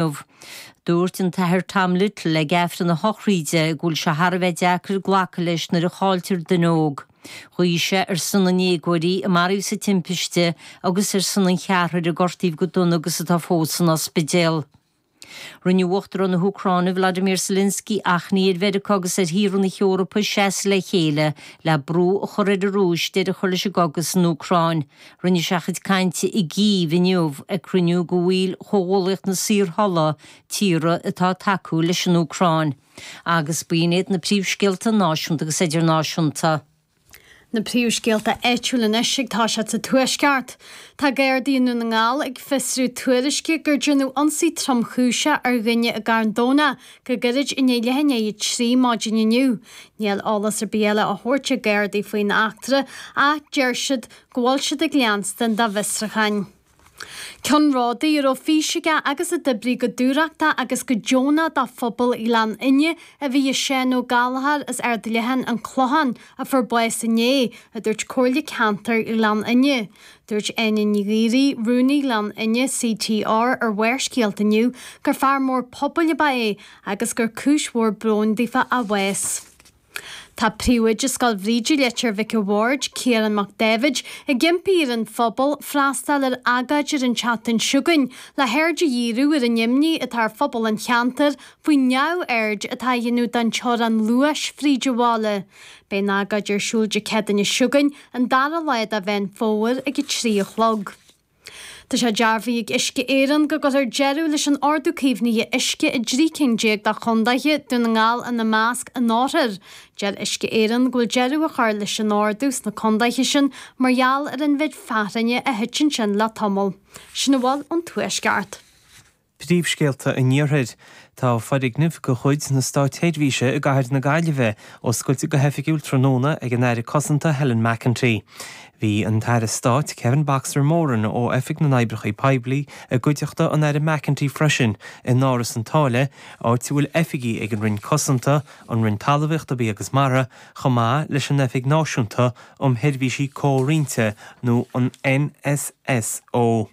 inniu. Dúirt an tAthair Tom Little ag Aifreann a shochraíde go bhfuil sé thar a bheith deacair glacadh leis nuair a chailltear duine óg. Ghuigh sé ar son na ndéagóirí a maraíodh sa timpiste agus ar son an cheathrair a gortaíodh go dona agus atá fós san ospidéal. Rinne Uachtarán na hÚcráine Volodymyr Zelensky achainí ar Mheiriceá agus ar thíortha na hEorpa seasamh le chéile le brú a chur ar an Rúis deireadh a chur leis an gcogadh san Úcráin. Rinne sé a chuid cainte i gCív inniu ag cruinniú de bhaill Chomhghuaillíocht na Saorthola tíortha atá ag tacú leis an Úcráin, agus b'in iad na príomhscéalta náisiúnta agus idirnáisiúnta. Na príomhscéalta áitiúil anois ag tosacht sa Tuaisceart. Tá Gardaí i nDún na nGall ag fiosrú tuairisce gur déanadh ionsaí tromchúiseach ar dhuine i gCarn Domhnach Go gairid i ndiaidh leath i ndiaidh a trí maidin inniu, níl eolas ar bith eile á thabhairt ag Gardaí faoin eachtra ach deir siad go bhfuil siad ag leanstan dá bhfiosrucháin. Ceannródaí a raibh fís aige agus a d'oibrigh go dúthrachtach agus go deonach dá phobal Ghleann Fhinne a bhí i Seán Ó Gallchóir as Ard Leathan, An Clochán, a fuair bás inné, a dúirt Comhairle Ceantair Ghleann Fhinne. Dúirt Áine Ní Dhíoraí, Rúnaí Ghleann Fhinne, CTR, ar Bharrscéalta inniu gur fear mór pobail ab ea é agus gur cúis mhór bróin daofa a bhás. Tá Príomhoide Scoil Bhríde Leitir Mhic an Bhaird, Ciarán Mac Dáibhid, ag impí ar an phobal freastal ar agóid ar an tseachtain s'againn le haird a dhíriú ar an imní atá ar phobal an cheantair faoin neamhaird atá á dhéanamh don teorainn luais fríd an bhaile. Beidh an agóid ar siúl Dé Céadaoine s'againn, An dara lá de Mheán Fómhair ag a trí a chlog. Tá sé dearbhaithe ag Uisce Éireann go gcuirfear deireadh leis an ordú caomhnaithe uisce i dtrí cinn déag de chondaethe, Dún na nGall ina measc, anóirthear. Deir Uisce Éireann go bhfuil deireadh á chur leis an ordú sna condaethe sin mar gheall ar an mhéid fearthainne a thit ansin le tamall. Sin a bhfuil ón tuaisceart. Príomhscéalta an Iarthair. Tá foirgneamh de chuid na státseirbhíse i gcathair na Gaillimhe oscailte go hoifigiúil tráthnóna ag an Aire Cosanta Helen McEntee. Bhí an tAire Stáit Kevin Boxer Moran ó Oifig na nOibreacha Poiblí i gcuideachta an Aire McEntee freisin in Áras an tSáile, áit a bhfuil oifigí ag an Roinn Cosanta, an Roinn Talmhaíochta, Bia agus Mara, chomh maith leis an Oifig Náisiúnta um Sheirbhísí Comhroinnte nó an NSSO.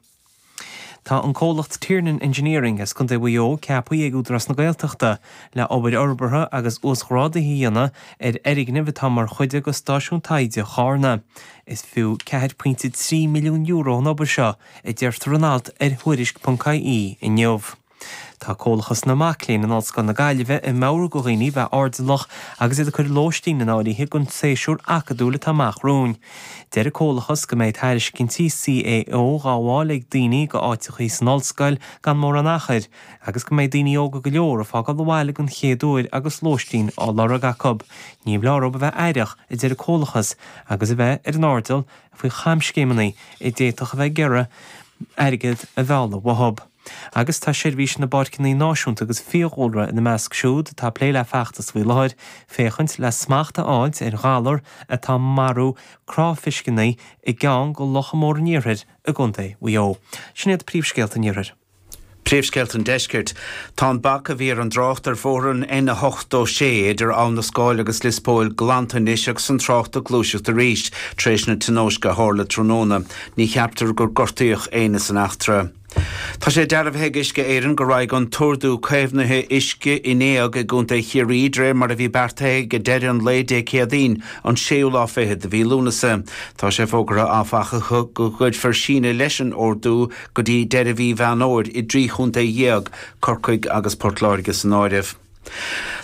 Tá an comhlacht Tiernan Engineering as Contae Mhaigh Eo ceapthaí ag Údarás na Gaeltachta le obair fhorbartha agus uasghrádaithe a dhéanamh ar fhoirgneamh atá mar chuid de Stáisiún Taighde Charna. Is fiú ceathar pointe trí milliún euro an obair seo, a deirtear in alt ar Thuairisc. ie, inniu. Tá Comhlachas na Mac Léinn in Ollscoil na Gaillimhe ag meabhrú do dhaoine bheith airdeallach agus iad ag cur lóistín in áirithe don tséasúr acadúil atá amach romhainn. Deir an Comhlachas go mbeidh tairiscintí CAO dhá bhfáil ag daoine do áiteachaí san Ollscoil gan mórán achair, agus go mbeidh daoine óga go leor ag fágáil an bhaile den chéad uair agus lóistín á lorg acu. Ní mór dóibh a bheith aireach, a deir an Comhlachas, agus a bheith ar an airdeall faoi chamscéimeanna a d'fhéadfadh a bheith ag iarraidh airgead a mhealladh uathu. Agus tá Seirbhís na bPáirceanna Náisiúnta agus Fiadhúlra ina measc siúd atá ag plé le feachtas faoi láthair féachaint le smacht a fháilt ar ghalar atá marú cráifiscíní i gceann de locha móra an Iarthair i gContae Mhaigh Eo. Sin iad príomhscéalta an Iarthair. Príomhscéalta an Deiscirt. Tá an bac a bhí ar an dtrácht ar bhóthar an N86 idir Abha na Scáil agus Lios Póil glanta anois agus an trácht ag gluaiseacht arís tar éis na tionóisce a tharla tráthnóna. Ní cheaptar gur gortaíodh éinne san eachtra. Tá sé dearbhaithe ag Uisce Éireann go raghaidh an t-ordú caomhnaithe uisce in éag i gContae Chiarraí de réir mar a bhí beartaithe ag deireadh an lae Dé Céadaoin, an séú lá fichead de mhí Lúnasa. Tá sé fógartha, áfach, go gcuirfear síneadh leis an ordú go dtí deireadh mhí Mheán Fhómhair i dtrí chontae dhéag, Corcaigh agus Port Láirge san áireamh.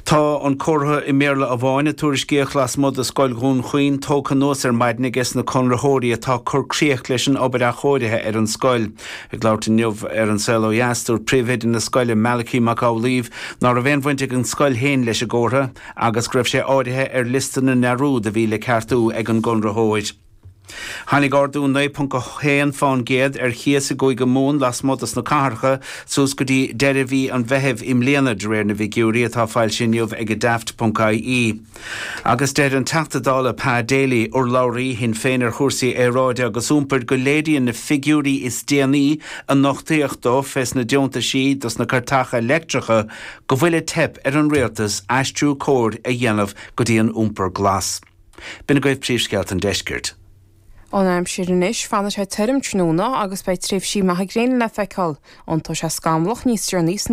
Tá an comhartha i mBéarla amháin a tuairiscíodh lasmuigh de Scoil Dhún Chaoin tógtha anuas ar maidin aige sna conraitheoirí atá ag cur críoch leis an obair athchóirithe ar an scoil. Ag labhairt inniu ar An Saol Ó Dheas, dúirt príomhoide na scoile, Malachi Mac Amhlaoibh, ná raibh aon bhaint ag an scoil féin leis an gcomhartha agus go raibh sé áirithe ar liosta na ndearúd a bhí le ceartú ag an gconraitheoir. Tháinig ardú 9.1 fán gcéad ar chíos i gCúige Mumhan lasmuigh dos na cathracha suas go dtí deireadh mhí an Mheithimh i mbliana, de réir na bhfigiúirí atá foilsithe inniu ag Daft. ie. Agus deir an Teachta Dála Pa Daly, urlabhraí Shinn Féin ar chúrsaí aeráide agus iompair, go léiríonn na figiúirí is déanaí a nochtaíodh dó fés na deontaisí dos na cairteacha leictreacha go bhfuil ag teip ar an Rialtas aistriú cóir a dhéanamh go dtí an iompar glas. B'in agaibh príomhscéalta an deiscirt. An aimsir anois, fanfaidh sé tirim tráthnóna agus beidh tréimhsí maithe gréine le feiceáil. Iontóidh sé scamallach níos deireanaí san